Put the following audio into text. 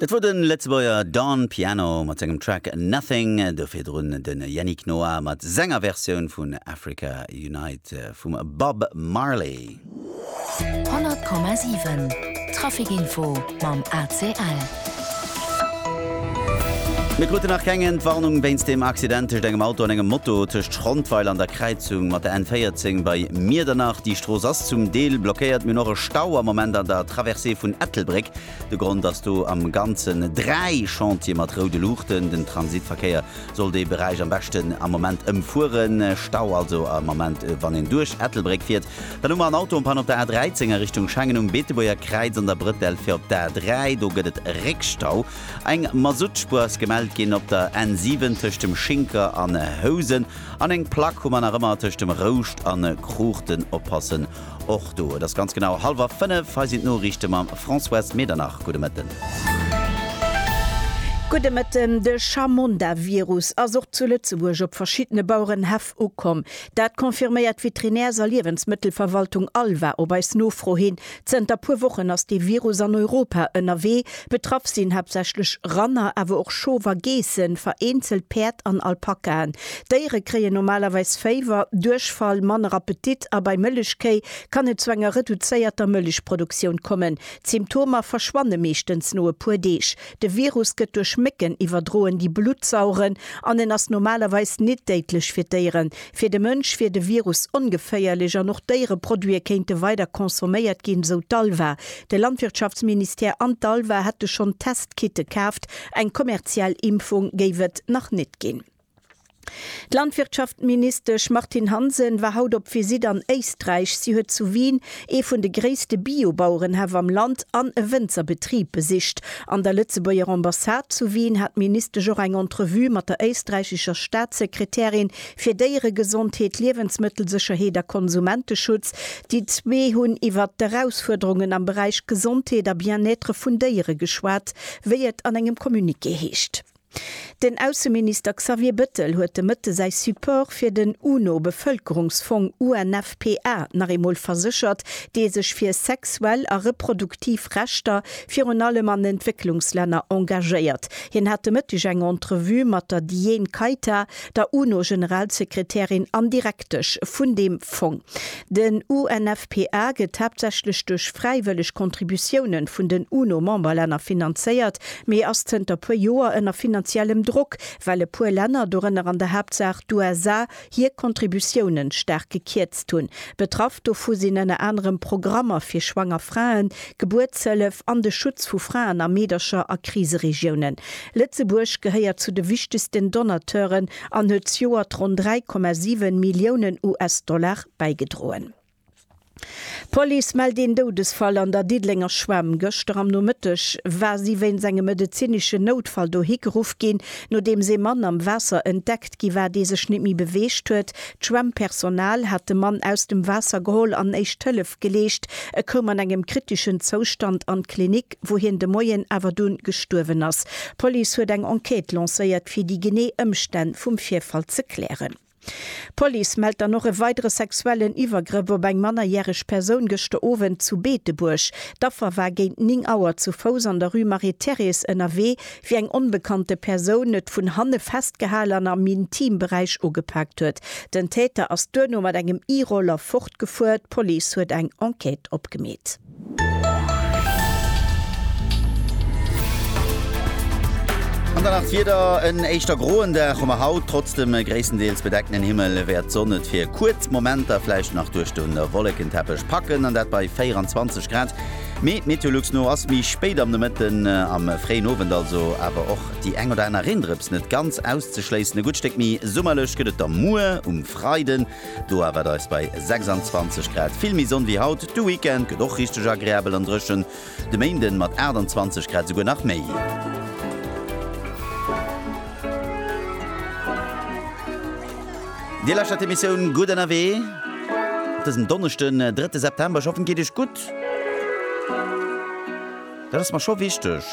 Dat wor den Lëtzebuerger Don Piano mat sengem Track Nothing, do virdrun den Yannick Noah mat senger Versioun vun Africa Unite vum Bob Marley. 100,7 Traffic Info mam ACL. Mir kruten nach keng Entwarnung wéinst dem Accident tëscht engem Auto an engem Moto tëscht Schrondweiler an der Kräizung mat der N14 bei Miedernach. Déi Strooss ass zum Deel blockéiert. Mir hunn och e Stau am Moment an der Traversée vun Ettelbréck. De Grond ass do am Ganzen dräi Chantiere mat roude Luuchten. Den Transitverkéier soll dee Beräich am beschten am Moment ëmfueren. Stau also am Ament wann een duerch Ettelbréck fiert. Dann hu mer en Auto en Panne op der A13 a Richtung Schengen um Beetebuerger Kräiz an der Brëtell fir op d'A3. Do gëtt et Réckstau. Eng Masuttspuer ass gemellt ginn op der N7 tëscht dem Schinker an Housen an eng Plack hu mer nach ëmmer tëscht dem Rouscht an Cruchten. Oppassen Och do, et ass ganz genau hallwer fënnef. Hei sinn d'Noriichte mam Françoise Medernach. Gudde Mëtten. Gudde Mëtten. De Chamonda-Virus ass och zu Lëtzebuerg op verschiddene Bauerenhäff ukomm. Dat confirméiert d'Veterinärs a Liewensmëttelverwaltung Alva op eis Nofro hin. Zënter puer Wochen ass dee Virus an Europa ënnerwee. Betraff sinn haaptsächlech Ranner, awer och Schofer, Geessen, vereenzelt Päerd an Alpakaen. D'Déiere kréien normalerweis Féiwer, Duerchfall, manner Appetit a bei Mëllechkéi kann et zu enger reduzéierter Mëllechproduktioun kommen. D'Symptomer verschwanne meeschtens no e puer Deeg. De Virus gëtt duerch Mécken iwwerdroen, déi Blutt saugen an en ass normalerweis nit déidlech fir d'Déieren. Fir de Mënsch wier de Virus ongeféierlech an och Déiereproduite kéinte weider consomméiert ginn, sou d'ALVA. De Landwirtschaftsministère an d'ALVA hätte schonn Testkitte kaaft, eng kommerziell Impfung géif et nach net ginn. D'Landwirtschaftministesch Martine Hansen war haut op Visitt an Éisträich. Si huet zu Wien ee vun de gréisste Bio-Bauerenhäff am Land an e Wënzerbetrib besicht. An der Lëtzebuerger Ambassade zu Wien hat d'Ministesch och eng Entrevue mat der éisträichescher Staatssekretärin Fir Déieregesondheet, Liewensmëttelsécherheet a Konsumenteschutz, déi zwee hunn iwwert d'Erausfuerderungen am Beräich Gesondheet a Bien-être vun Déiere geschwat, wéi et an engem Communiqué heescht. Den Ausseminister Xavier Bettel huet de Mëtte säi Support fir den UNO-Bevëlkerungsfong, UNFPA, nach eemol verséchert, dee sech fir sexuell a reproduktiv Rechter virun allem an Entwécklungslänner engagéiert. Hien hat de Mëtteg eng Entrevue mat der Diane Kaita, der UNO-Generalsekretärin an Direktesch vun deem Fong. Den UNFPA gëtt haaptsächlech duerch fräiwëlleg Contributiounen vun den UNO-Memberlänner finanzéiert, mee ass zënter puer Joer ënner finanziellem Drock, well e puer Länner, dorënner an der Haaptsaach d'USA, hir Contributiounen staark gekierzt hunn. Betraff dovu sinn ënner anerem Programmer fir schwanger Fraen, Gebuertshëllef an de Schutz vu Fraen a Meedercher a Kriseregiounen. Lëtzebuerg gehéiert zu de wichtegsten Donateuren an huet zejoert ronn 3,7 Milliounen US-Dollar bäigedroen. D'Police mellt een Doudesfall an der Diddelenger Schwämm. Gëschter am Nomëtteg war si wéinst engem medezineschen Noutfall dohi geruff ginn, nodeems ee Mann am Waasser entdeckt gi war, dee sech net méi beweegt huet. D'Schwämmpersonal hat de Mann aus dem Waasser geholl an éischt Hëllef geleescht. E koum an engem kriteschen Zoustand an d'Klinik. wou hien de Moien awer dunn gestuerwen ass. D'Police huet eng Enquête lancéiert, fir déi genee Ëmstänn vum Virfall ze klären. D'Police mellt dann och e weidere sexuellen Iwwergrëff op eng mannerjäreg Persoun gëschter Owend zu Beetebuerg. D'Affer war géint 9 Auer zu Fouss an der Rue Marie-Thérèse ënnerwee, wéi eng onbekannte Persoun et vun hanne festgehal an am Intimberäich ugepaakt huet. Den Täter ass duerno mat engem E-Roller fortgefuer. D'Police huet eng Enquête opgemeet. An dann nach d'Wieder, En éischter groen Dag hu mer haut, trotz dem gréisstendeels bedeckten Himmel wäert d'Sonn et fir kuerz Momenter vläicht nach duerch de Wollekenteppech packen, an dat bei 24 Grad. Mee Meteolux no ass méi spéit am Nomëtten, am fréien Owend also awer och déi eng oder aner Reendrëps net ganz auszeschléissen. E gutt Stéck méi summerlech gëtt et da muer um Freiden. Do awer et eis bei 26 Grad vill méi Sonn wéi haut. De Weekend gëtt och richteg agreabel an dréchen, de Méinden mat 28 Grad esouguer nach méi. Dir lauschtert d'Emissioun Gutt ënnerwee op dësem Donneschden, 3. September. Ech hoffen et geet Iech gutt. Dat ass mer scho wichteg.